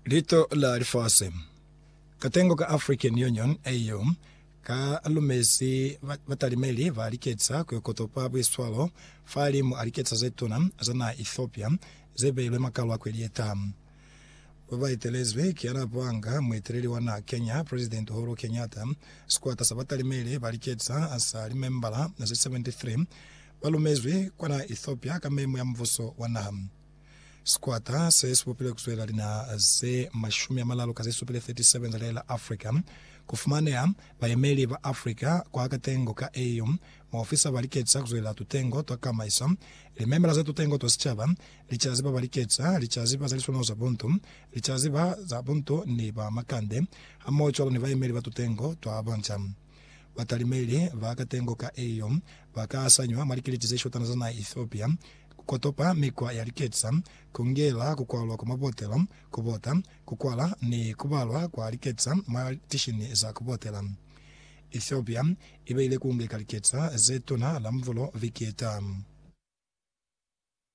Lito la Lifasi. Katengo ka African Union, AU, ka lumezi ba- batalimeli ba liketsa ku yo kotopa buiswalo fahalimu a liketsa ze tuna za naha Ethiopia ze beilwe makalo a kweli ye taha. Ba ba etelezwi ki yana panga mueteleli wa naha Kenya, President Uhuru Kenyatta. Sikwata sa batalimeli ba liketsa sa limembala ze 73 ba lumezwi kwa naha Ethiopia ka memo ya mubuso wa naha. Sikwata se si bupile ku zwelela linaha ze mashumi amalalu ka ze supile, 37, za lihae la Africa. Ku fumaneha bayemeli ba Africa kwa katengo ka AU. Maofisa ba liketisa ku zwelela tutengo twa kamaiso, limemela za tutengo twa sicaba, licazi ba ba liketisa, licazi ba za liswanaho za buntu, licazi ba za buntu ni ba makande, hamoho cwalo ni bayemeli ba tutengo twa banja. Batalimeli ba katengo ka Au ba ka asanywa mwa likiliti ze shotana za naha ya Ethiopia, ku kotopa mikwa ya liketsa, ku ngela ku kwalwa kwa mabotelo, ku bota, ku kwala ni ku balwa kwa liketsa mwa tishini za ku botela. Ethiopia i beile ku ngeka liketsa ze tuna la muvulo viki ye tama.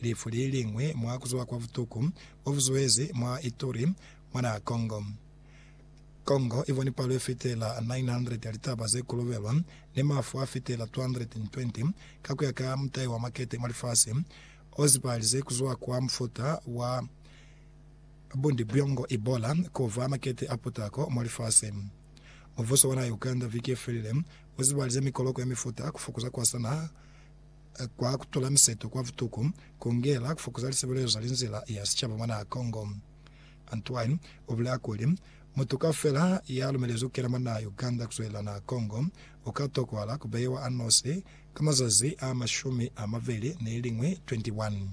Lifu li liñwi mwa ku zuba kwa butuku bo bu zuezi mwa Ituri, mwa naha Congo. Congo i boni palo ye fitela 900 ya litaba ze kolobelwa ni mafu a fitela 220, ka ku ya ka mutai wa makete mwa lifasi, o zibahalize ku zuha kwa mufuta wa Bundibugyo, Ebola, ku ba makete a putako mwa lifasi. Mubuso wa naha ya Uganda viki ye felile u zibahalize mikoloko ya mifuta ku fokoza kwasana kwa. kwa kutula miseto kwa butuku, kungela kufokoza lisebelezo za linzila ya sicaba mwa naha Congo. Antoine ubulela kuli, Mutu kaufela ya lumelezi kukena mwa naha Uganda kuzwelela naha Congo, uka tokwahala kubeiwa anosi ka mazazi a mashumi amabeli neliñwi, 21.